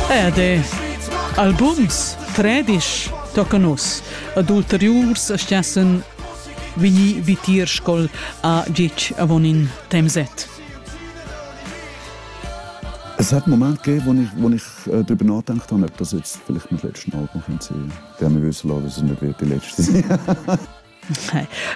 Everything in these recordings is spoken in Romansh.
Ed albums tredisch tocan nus ad ulteriurs stessen vini vitir scol a gitg avon in temset. Es hat Moment gegeben, wo ich, wo ich äh, darüber nachgedacht habe, ob das jetzt vielleicht mein letztes Album könnte sein, der mir wissen lassen, dass es nicht wird die letzte.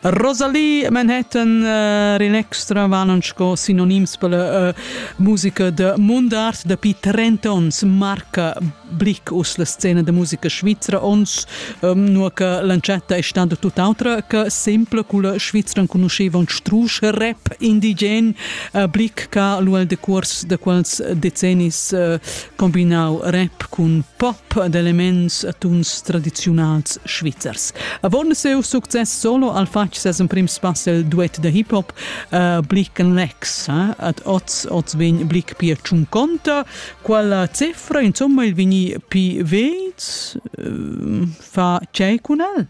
Rosalie Manhattan uh, in extra vanon sco sinonims per la uh, musica de mundart dapi 30 ons marca blick us la scena de musica svizra ons um, nur che l'ancetta è stata tutt'altra che sempre culla Svizra conosceva un strusch rap indigen uh, blick che l'uel de curs de quels decennis uh, combinau rap cun pop ed elements e tuns tradiziunals svizzers. Avon siu success solo al fatg ses emprim spass el duet da hip hop uh, Blick and Lex eh? ad oz oz vegn Blick pia Ciunconta quella cifra insomma il vini pi ved uh, fa tgei cun el?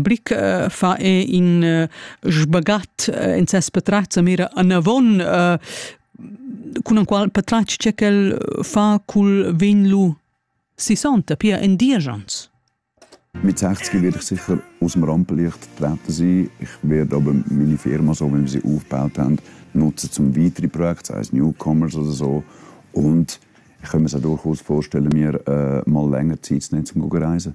Blick fa e in sbagat in ses patratg sa mira anavon cun enqual patratg che quel fa cul vin lu sisonta, pia en diesch onns. Mit 60 werde ich sicher aus dem Rampenlicht getreten sein. Ich werde aber meine Firma, so wie wir sie aufgebaut haben, nutzen zum weitere Projekte, sei es Newcomers oder so. Und ich kann mir es auch durchaus vorstellen, mir äh, mal länger Zeit zu nehmen, um zu reisen.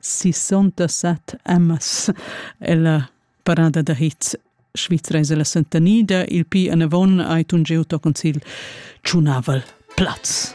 67 emmas ella parada da hits Svizra es ella sentanida, il pi anavon ai tun gieu to concil tschunaval plaz.